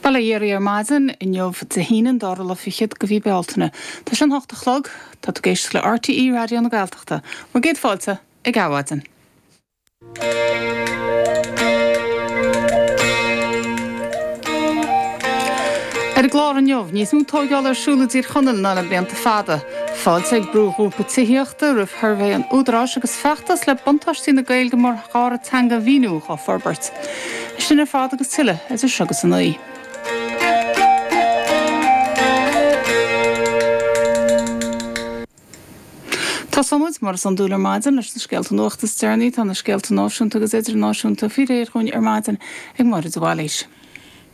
Bail ó Dhia oraibh ar maidin inniu, Dé hAoine an dara lá fichead de mhí Bealtaine. Tá sé a hocht a chlog. Tá tú ag éisteacht le RTÉ Raidió na Gaeltachta. Bhur gcéad fáilte ag Adhmhaidin. Ar an gclár inniu, Níos mó tóigeála ar siúl i dTír Chonaill ná le blianta fada, Fáilte ag brúghrúpa tithíochta roimh shuirbhé an Údaráis agus feachtas le buntáistí na Gaeilge mar dhara teanga a mhíniú á forbairt. Sin ar fad agus tuilleadh idir seo agus a naoi. Tosóimid, mar is iondúil ar maidin, leis na scéalta nuachta is deireanaí. Tá na scéalta náisiúnta agus idirnáisiúnta faoi réir dhúinn ar maidin ag Máire de Bhailís.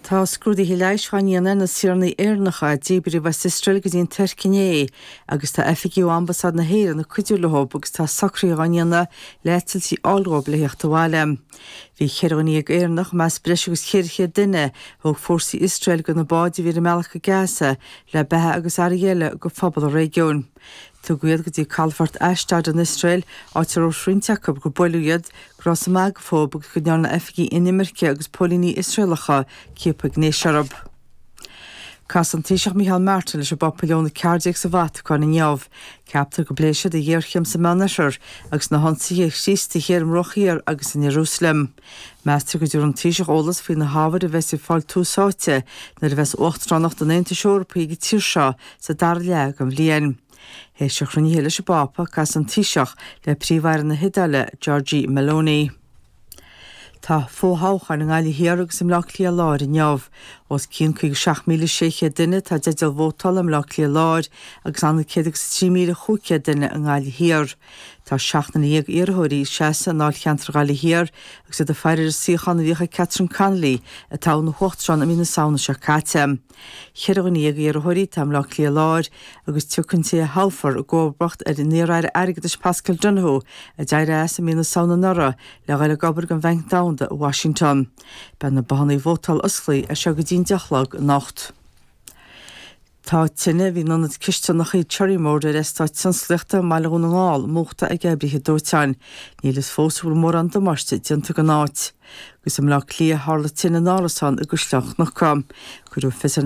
Tá scrúduithe leighis á ndéanamh ar na saoranaigh Éireannacha a díbríodh as Iosrael go dtí an Tuirc inné agus tá oifigigh ó Ambasáid na hÉireann ag cuidiú leo agus tá socruithe á ndéanamh le heitiltí a fháil dhóibh le theacht abhaile. Bhí ceithre dhuine dhéag Éireannach, i measc breis agus 400 duine, a thóg fórsaí Iosrael de na báid a bhí ar a mbealach go Gaza le beatha agus earraí eile do phobal an réigiúin. Tugadh iad go dtí calafort Ashdod in Iosrael, áit ar dhúirt roinnt acu gur buaileadh iad, go rabhthas ag magadh fúthu agus go ndearna oifigigh inimirce agus póilíní Iosraelacha ciapadh gnéis orthu. Casfaidh an Taoiseach Micheál Martin leis an bPápa Leon a Ceathair Déag sa Vatacáin inniu. Ceaptar go bpléifidh siad an ghéarchéim sa Meánoirthear agus na hionsaithe ar Chríostaithe ar an mBruach Thiar agus in Ierúsaleim. Meastar go dtabharfaidh an Taoiseach eolas faoi na hábhair a bheas ag fáil tús áite nuair a bheas Uachtaránacht an Aontais Eorpaigh ag an tír seo sa dara leath den bhliain. Théis a chruinnithe leis an bPápa, casfaidh an Taoiseach le Príomh-Aire na hIodáile, Giorgia Meloni. Tá fo-thoghcháin i nGaillimh Thiar agus i mBleá Cliath Láir inniu. Os cionn 57,600 duine atá i dteideal vótála i mBleá Cliath Láir agus ann a 100 agus 3,500 duine i nGaillimh Thiar. Tá seacht nduine dhéag iarrthóirí ag seasamh i ndáilcheantar Ghaillimh Thiar agus iad ag faire ar an suíochán a bhíodh ag Catherine Connolly, a toghadh ina huachtarán i mí na Samhna seo caite. Cheithre dhuine dhéag iarrthóirí atá i mBleá Cliath Láir agus tiocfaidh an té a thoghfar i gcomharbacht ar an iar-aire airgeadais Paschal Donohoe, a d'éirigh as i mí na Samhna anuraidh le dhul ag obair don Bhanc Domhanda i Washington. Beidh na bothanna vótála osclaíthe as seo go dtí an 10 a chlog anocht. Tá tine a bhí in ionad cisteanacha Cherrymore ar eastát tionsclaíochta i mBaile Dhún na nGall múchta ag oibrithe dóiteáin. Níl a fhios fós an bhfuil mórán damáiste déanta don áit. Agus i mBleá Cliath tharla tine in árasán i gCaisleán Cnucha. Cuireadh fios ar.